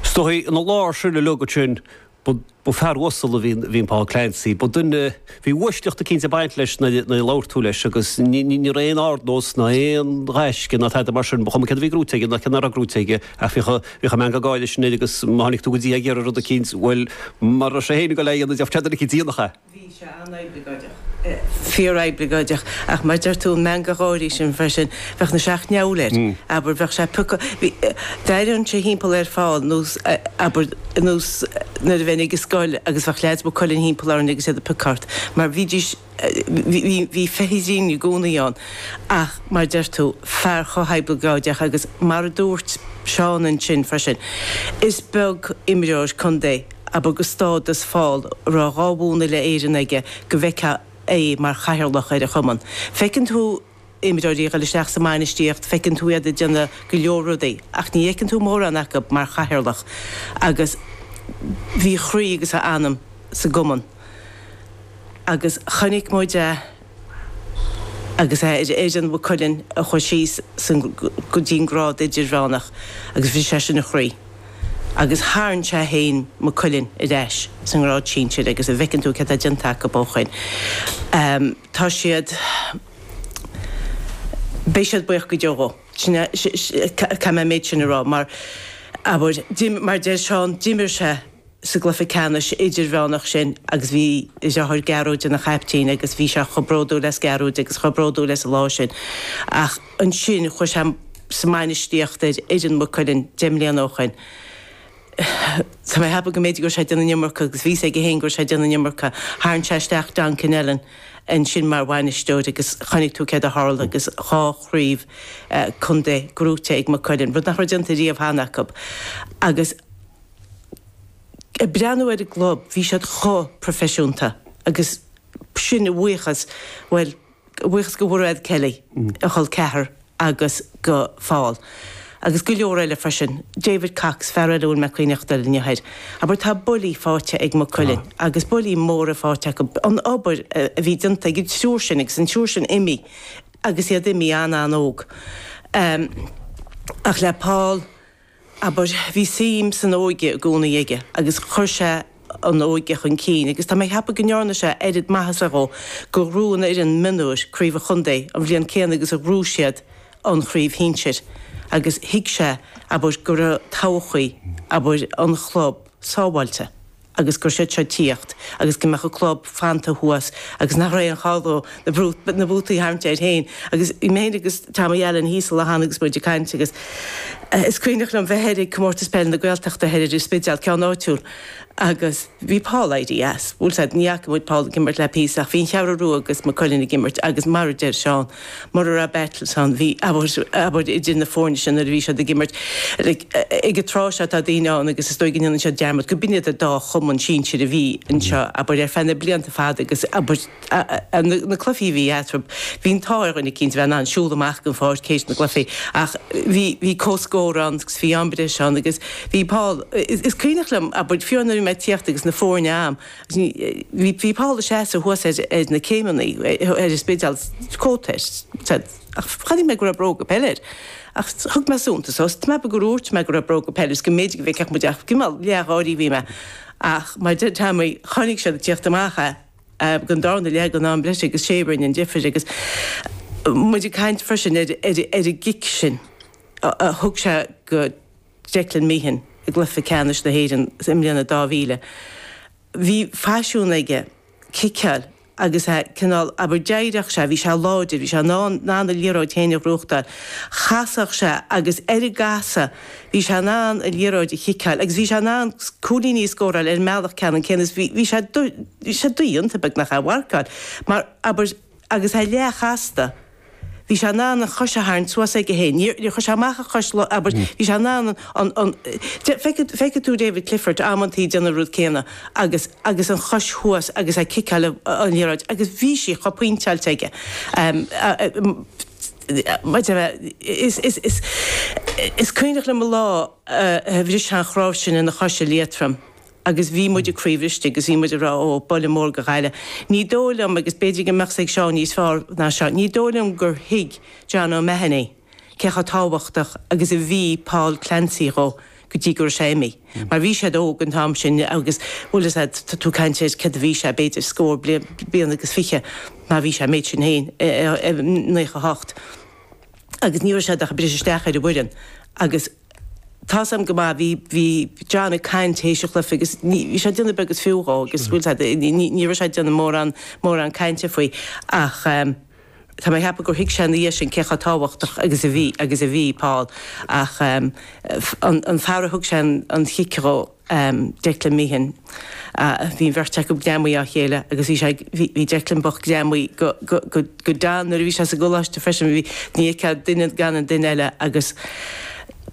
Stoithí ina lár sin a leagadh sin. Ba fear uasal a bhí in Paul Clancy. Ba duine, bhí uaisleacht eicínt ag baint leis nuair a labhair tú leis agus ní raibh aon ardnós ná aon ghaisce ná tada mar sin, ba chuma céard a bhí gnóite aige ná céard nach raibh gnóite aige ach bhíodh an meangadh gáire sin air agus má tháinig tú go dtí é ag iarraidh rud eicínt, bhuel, mara raibh sé féin ag dul á dhéanamh, gheobhadh sé duine eicínt a dhéanfadh é. Bhí sé an-oibleagáideach. Fíor-oibleagáideach. Ach mar a deir tú, meangadh gáirí sin freisin. Bheadh na seacht ndeabhail air, abair. Bheadh sé pioc. D'airínnse thimpeall ar Phaul, nó, abair, nó nuair a bheinn ag an scoil agus bheadh leaids Maigh Cuilinn thimpeall orainn agus iad ag piocadh ort. Mar bhídís, bhí, bhí feithidín i gcónaí ann. Ach mar a deir tú, fear chomh hoibleagáideach agus mar a dúirt Seán ansin freisin, is beag imreoir contae abair, de stádas Phaul a raibh dhá bhonn Uile Éireann aige go bhfeicfeá é mar chathaoirleach ar a chumann. Feiceann tú imreoirí ag dul isteach sa mbainistíocht, feiceann tú iad ag déanamh go leor rudaí, ach ní fheiceann tú mórán acu mar chathaoirleach. Agus bhí a chroí agus a anam sa gcumann. Agus chonaic muid é. agus é ar fhoireann Mhaigh Cuilinn a chuaigh síos go dtí an grád idirmheánach agus bhris sé sin a chroí agus tharraing sé féin Maigh Cuilinn ar ais sa ngrád sinsir agus an bhfeiceann tú céard atá déanta acu ó shin. Tá siad, beidh siad buíoch go deo dhó. Sin é, caithfidh mé an méid sin a rá mar, abair, mar deir Seán, d'imir sé. sa gcluiche ceannais idirmheánach sin agus bhí a dheartháir Gearóid ina chaiptín agus bhí sé chomh bródúil as Gearóid agus chomh bródúil as an lá sin ach ansin chuaigh sé sa mbainistíocht ar fhoireann Mhaigh Cuilinn deich mbliana ó shoin tá mé ag ceapadh go mb'fhéidir go raibh sé ag déanamh an iomarca agus bhí fhios aige féin go raibh sé ag déanamh an iomarca tharraing sé isteach Don Connellan ansin mar bhainisteoir agus chonaic tú céard a tharla agus dhá chraobh contae gnóite ag Maigh Cuilinn rud nach raibh déanta riamh cheana acu agus. ag breathnú ar an gclub, bhí siad chomh proifisiúnta agus sin a bhuíochas, bhuel, a bhuíochas go Mhurad Kelly, a chol ceathar, agus go Phaul agus go leor eile freisin, David Cox, fear eile a bhfuil mé ag cuimhneachtáil air inniu thoir, abair, tá buillí faighte ag Maigh Cuilinn agus buillí móra faighte acu, an obair a bhí déanta ag an triúr sin agus an triúr sin imithe agus iad imithe an-an-óg ach le Paul, Abair, bhí suim san óige i gcónaí aige agus chuir sé an óige chun cinn agus tá mé ag ceapadh go ndearna sé oiread maitheasa dhó gur ghnóthaigh an fhoireann mionúir craobh an chontae an bhliain chéanna agus a ghnóthaigh siad an chraobh shinsir agus thuig sé, abair, go raibh todhchaí, abair, an chlub. sábháilte agus go raibh siad seo ag tíocht agus go mbeadh an club fanta thuas agus nach raibh aon chall dó na bútaí a tharraingt air féin agus bhí mé féin agus Tommy Allen thíos sa lochán agus muid ag caint agus is cuimhneach liom bheith thoir ag Comórtas Peil na Gaeltachta thoir ar an Spidéal, ceann áitiúil agus bhí Paul éirithe as, bhuel ní fhaca muid Paul ag imirt le píosa ach bhí an Cheathrú Rua agus Maigh Cuilinn ag imirt agus mar a deir Seán. Mura raibh battles ann, bhí abair idir na foirne seo nuair a bhí siad ag imirt. Ag an tráth seo tá daoine ann agus is dóigh go ndéanann siad dearmad gurb in iad an dá chumann sinsir a bhí anseo abair ar feadh na blianta fada agus abair na cluichí a bhí eatarthu. Bhí an t-ádh ar dhuine eicínt a bheith in ann siúl amach den pháirc tar éis na gcluichí ach bhí bhí comhscór ann agus bhí am breise ann agus bhí Paul, is cuimhneach liom, abair nuair a bhí mé ag tíocht agus na foirne ann. Bhí Paul ag seasamh thuas ar na céimeanna ar an Spidéal, cóta air, said, ach chonaic mé go raibh bróga peile air. Ach thug mé suntas dhó, is measaim gur úirt mé go raibh bróga peile air is go mb'fhéidir go bhfeicfeadh muid é, ach cineál leathgháirí a bhí mé. Ach mar a deir Teaimí, chonaic muid ag teacht amach é, gan dabht, le haghaidh an am breise agus sé a rinne an difir agus muid ag caint freisin ar an gcic sin a thug sé go Declan Meehan i gcluiche ceannais na hÉireann i mbliain a 2000. Bhí faisiún aige ciceáil agus é cineál, abair, d'éiríodh sé, bhí sé láidir, bhí sé in ann in ann a liathróid féin a bhuachtáil. Chasadh sé agus ar an gcasadh bhí sé in ann an liathróid a chiceáil agus bhí sé in ann cúilíní a scóráil ar an mbealach ceannann céanna. Bhí sé, bhí sé, bhí sé dodhéanta, beagnach, é a mharcáil mar, abair, Agus é leathchasta. Bhí sé in ann an chois a tharraingt suas aige féin. Níor chuir sé amach a chois, abair. Bhí sé in ann an, an, feicfidh tú David Clifford amantaí ag déanamh an rud céanna agus, agus an chois thuas agus ag ciceáil an liathróid agus bhí sí chomh pointeáilte aige. Maidir le, is, is, is, is cuimhneach liom an lá a bhris sé an chnáimh sin ina chois i Liatrom. agus bhí muid croíbhriste agus bhí muid ag rá 'ó, buille mór do Ghaillimh'. Ní dóigh liom, agus b'fhéidir go mbeadh 's ag Seán níos fearr ná seo, ní dóigh liom gur thuig John O'Mahony cé chomh tábhachtach agus a bhí Paul Clancy dhó go dtí go raibh sé imithe. Mar bhí siad óg an t-am sin agus, bhuel, is ea, tá tú ag caint ar céard a bhí sé, b'fhéidir scór bliain agus fiche má bhí sé an méid sin féin, naocha hocht, agus ní raibh siad ach ag briseadh isteach ar an bhfoireann agus, Tá a fhios agam go maith. Bhí, bhí John ag caint théis an chluife agus ní, bhí sé ag déanamh beag is fiú dhó agus bhuel sé, ní, ní, ní raibh sé ag déanamh mórán, mórán cainte faoi ach ehm, tá mé ag ceapadh gur thuig sé ina dhiaidh sin cé chomh tábhachtach agus a bhí, agus a bhí Paul ach ehm, an, an fear a thug sé an, an chic dhó. um Declan Meehan. Uh bhí an bheirt acu greamaithe á chéile agus bhí sé ag, bhí, bhí Declan bocht greamaithe go, go, go, go Don nuair a bhí sé sa gcoláiste freisin, bhí, ní fheicfeá duine gan an duine eile agus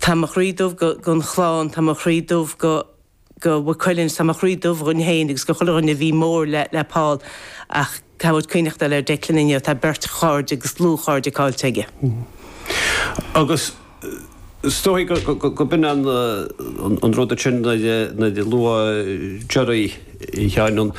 tá mo chroí dubh go, gon chlann, tá mo chroí dubh go, go Mhaigh Cuilinn, tá mo chroí dubh dhúinn fhéin agus go chuile dhuine a bhí mór le, le Paul ach. tá muid ag cuimhneachtáil ar Declan inniu, tá beirt chairde agus dlúthchairde caillte aige. Agus is dóigh gurb in an an rud sin nuair a luadh Doire cheana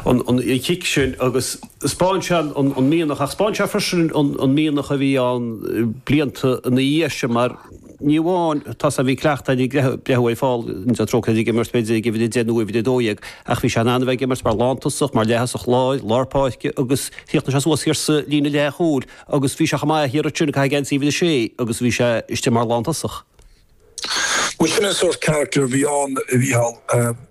an chic sin agus 'spáin sé an mianach ach 'spáin sé freisin an mianach a bhí ann blianta ina dhiaidh sin mar Ní amháin tá's agat bhí cleachtadh againn breathnú ar Paul, go ndéana Dia trócaire air, ag imirt b'fhéidir ag uimhir a deich nó uimhir a dó dhéag ach bhí sé in ann a bheith ag imirt mar lántosach, mar leath-thosach láir, lár páirce agus chríochnaigh sé suas thiar sa líne leathchúil agus bhí sé chomh maith thiar ansin, ag caitheamh geansaí uimhir a sé agus bhí sé istigh mar lántosach. Bhuel sin an sórt carachtar a bhí ann a Mhícheál.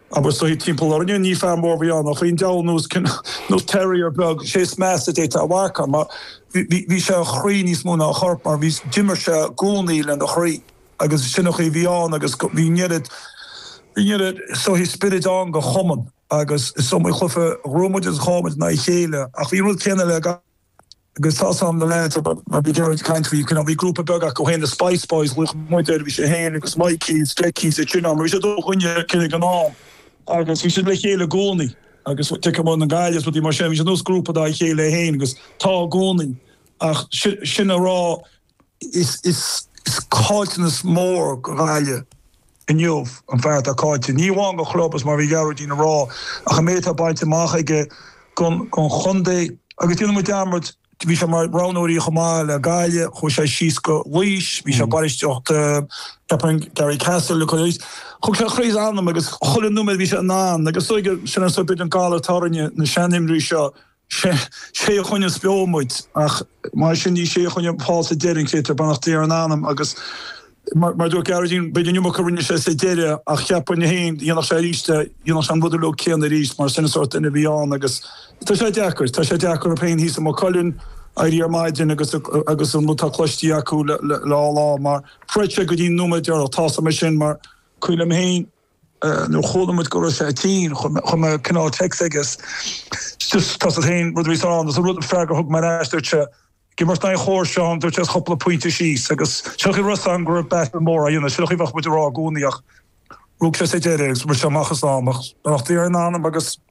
Abair sort of timpeall orainne, ní fear mór a bhí ann ach bhí an diabhal nós cineál nós terrier beag, sé is measa a d'fhéadfá a mharcáil mar bhí sé a chroí níos mó ná a chorp mar bhí, d'imir sé i gcónaí lena chroí agus sin an chaoi a bhí ann agus bhí an oiread, bhí an oiread sort of spioraid ann go chumann agus is iomaí cluiche a ghnóthaigh muid agus a chaill muid in aghaidh a chéile ach bhí an rud céanna le gach. Agus tá's agam na leaids, mar bhí Gerard ag caint faoi, you know, bhí grúpa beag acu fhéin, The Spice Boys, a ghlaoigh muid air, bhí sé fhéin agus Mikey, agus Decky, is iad sin ann, mar bhí siad ó Ghoinne Cinn ag an am, agus bhí siad le chéile i gcónaí, agus Dick i mbun an gaile is rudaí mar sin, bhí siad nós grúpa dá chéile fhéin, agus tá i gcónaí, ach sin a raibh. Is caillteanas mór go Ghaillimh inniu an fear atá caillte, ní amháin don chlub, is mar a bhí Gearóidín a rá, ach an méid atá bainte amach aige don chontae. Agus déanann muid dearmad, bhí sé mar roghnóir chomh maith le Gaillimh, chuaigh sé síos go Laois, bhí sé ag bainistíocht ceapaim Garrycastle, thug sé a chroí is a anam agus chuile nóiméad a bhí sé in ann agus sin an sórt b'fhéidir an galar atá orainne, na seanimreoirí seo Sé a choinníonns beo muid, ach mar sin ní sé a choinnigh Paul sa deireadh an créatúr, beannacht Dé ar a anam, agus mar dúirt Gearóidín, b'fhéidir an iomarca a rinne sé sa deireadh ach ceapaim féin dhéanfadh sé aríst é, dhéanfadh sé an rud uilig céanna aríst mar sin an sórt duine a bhí ann agus tá sé deacair, tá sé deacair orm féin thíos i Maigh Cuilinn éirí ar maidin agus agus an rud tá cloiste acu le le le dhá lá mar chreid sé go dtí an nóiméad deireanach, tá's agam sin mar cuimhním féin. nuair a chuala muid go raibh sé tinn, chuir mé cineál text aige, agus tá's agat féin, rud a bhí san ann, an rud, freagra a thug mé ar ais, dúirt sé, gidh mar tá an chóir seo ann, dúirt sé, is chúpla pointe síos, agus sin an chaoi a raibh seisean, go raibh battle mór á dhéanamh, sin an chaoi a bheadh muid a rá i gcónaí, ach rug sé sa deireadh, agus rith sé amach as am, ach beannacht Dé ar a anam agus.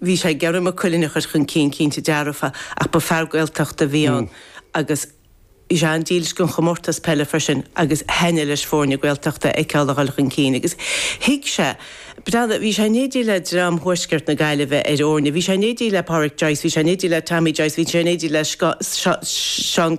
Bhí sé ag iarraidh Maigh Cuilinn a chur chun cinn, cinnte dearfa, ach ba fear Gaeltachta a bhí ann agus bhí sé an-dílis don chomórtas peile freisin agus thaithin leis foirne Gaeltachta a fheiceáil ag dul chun cinn. Agus thuig sé, breathnaigh, bhí sé in éindí le dream thuaisceart na Gaillimhe ar fhoirne, bhí sé in éindí le Pádraic Joyce, bhí sé in éindí le Tommy Joyce, bhí sé in éindí le Seán,